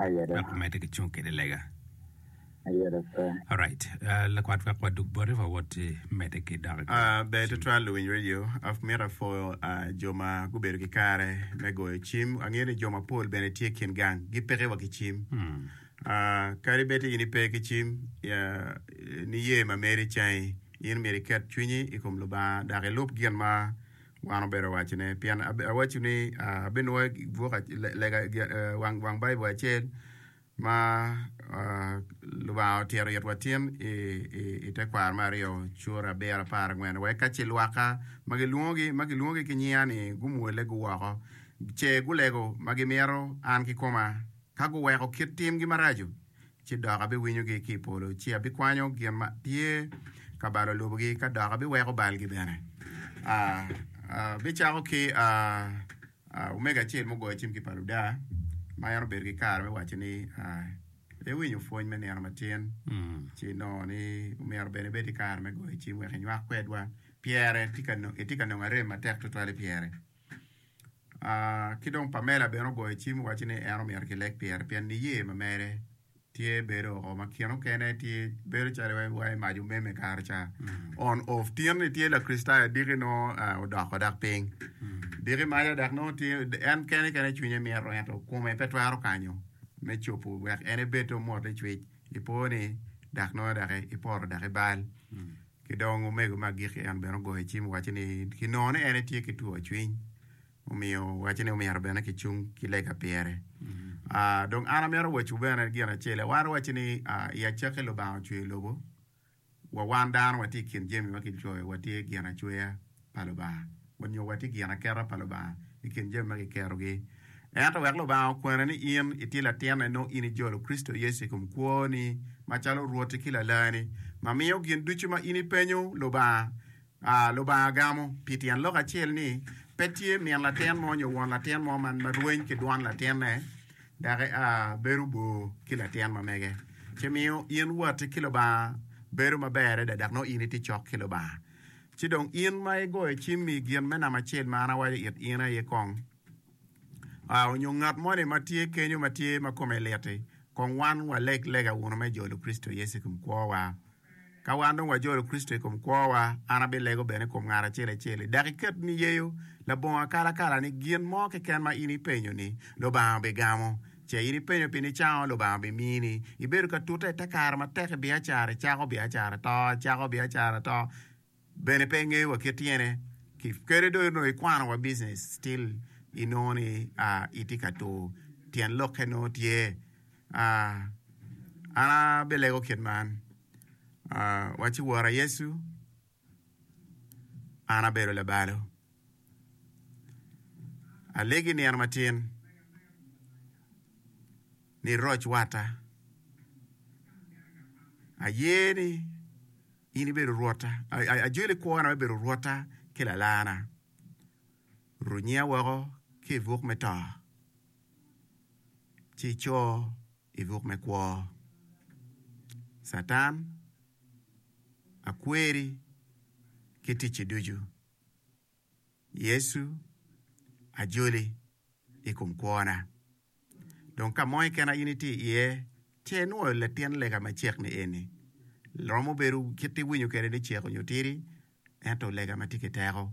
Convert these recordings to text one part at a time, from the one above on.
Aye dok. Wek wamedde ki cung kede lega. Aye dok pe. Alright. Uh, lakwat wek wadug bote wawoti medde ki dok. Uh, ber tutwal luwiny radio. Amito apwoyo uh, jo ma gubedo ki kare me goyo cim. Angeyo ni jo mapol bene tye kin gang gipeke wa ki cim. Hmm. Uh, kadi bed in ipe ki cim, ya, niye ma meri cangi, in myero iket cwinyi i kom Lubanga dok ilub gin ma Wan obedo waco ne, pien awaco ni abinwoga buk lega wang Baibul acel ma Lubanga otito it watin i te kwaro me aryo, Cura abiro apar angwen, wek ka ce lwakka ma gilwongogi ki nyinga ni gumwole guwoko, ce gulego ma gimito an kikoma, ka guweko kit timgi maraco. ci dok abiwinyogi ki i polo, ci abikwanyo gin ma tye ka balo lobogi, ka dok abiweko balgi bene. Abicako ki omege acel mugoyo cim ki pa Luda, ma en obedo ki kare me waco ni, Iwinyo pwony me nino matin, ci inongo ni omyero bene ibed ki kare me goyo cim wek inywak kwedwa, pyere itye ka nongo arem matek tutwal i pyere. Ki dong Pamela bene ogoyo cim owaco ni en omyero kileg pire pien niye ma mere tye bedo oo ma kine mukene tye bedo calo iwaco ni mac omeme kare ca. On off tin ni tye Lakricitayo adiki nongo odoko dok piny diki maca dok nongo tye en kene kene cwinye mito ento kome pe twero kanyo me cobo wek en ebed te omwotte cwic. Ipo ni dok nongo dok iporo dok ibal. Ki dong omego me agikki en bene ogoyo cim owaco ni ki nongo ni en etye ki two cwiny omiyo owaco ni omyero bene ki cung ki lega pyere. Aa, dong an amyero awacwu bene gin acel, awaro waco ni aa, i acakki Lubanga ocweyo lobo, wa wan dano watye i kin jami ma kicoyo watye gin acweya. pa Lubanga. Wanyo watye ginaketa pa Lubanga i kin jami ma kikerogi. Ento wek Lubanga okwena ni in itye latine, nongo in ijolo Kricito Yecu i kom kwoni macalo Rwotti ki Lalani, ma miyo gin ducu ma in ipenyo Lubanga, Lubanga gamo. Pi tyen lok acel ni, pe tye min latin mo nyo won latin mo ma rweny ki dwan latinne dok bedo bor ki latin ma mege, ci miyo in watti ki Lubanga bedo maber adada dok nongo in itye cok ki Lubanga. Ci dong in ma igoyo cimmi i gin me namba acel ma an awaco it in aye kong a, onyo ngat moni ma tye kenyo ma tye ma kome lit-ti, kong wan waleg lega wunu me jolo Kricito Yecu i kom kwowa. Ka wan dong wajolo Kricito i kom kwowa, an abilego bene i kom ngat acel acel-li. Dok iket niyeyo labongo akalakala ni gin mo keken ma in ipenyo-ni, Lubanga bigamo. Ce in ipenyo pien icango Lubanga bimini. Ibedo ka tute ite kare matek i biacara, icako biacara to, icako biacara to, bene pe ingeyo wa kit tyene ki kadi dong inongo ikwano wa business still inongo ni itye ka tur tyen lokke nongo tye. An abilego kit man, waci wora Yecu. An abedo labalo. Alegi nino matin ni iroc watta. Aye ni in ibedo Rwotta, ajwili kwona me bedo Rwotta ki Lalarna. Runyiya woko ki i buk me to, ci ico. I buk me kwo, Catan, akweri, ki ticce ducu, Yecu ajoli i kom kwona. Dong ka mo keken ma in itye iye, ce inwoyo latin lega macek ni eni, romo bedo kit iwinyo kwede ni cek onyo tidi, ento lega ma tye ki teko.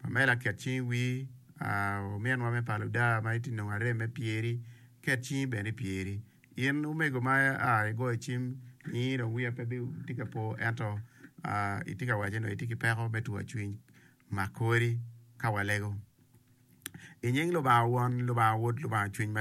Pamela ket cingi wi ominwa me palo daa ma itye nongo arem me pyeri ket cingi bene i pyeri in omego ma aa igoyo cim nini dong wiya pe tye ka po ento itye ka waco ni itye ki peko me twwa cwiny mak kori ka walego inying lubanga won lubanga wod lubanga cwiny maleng.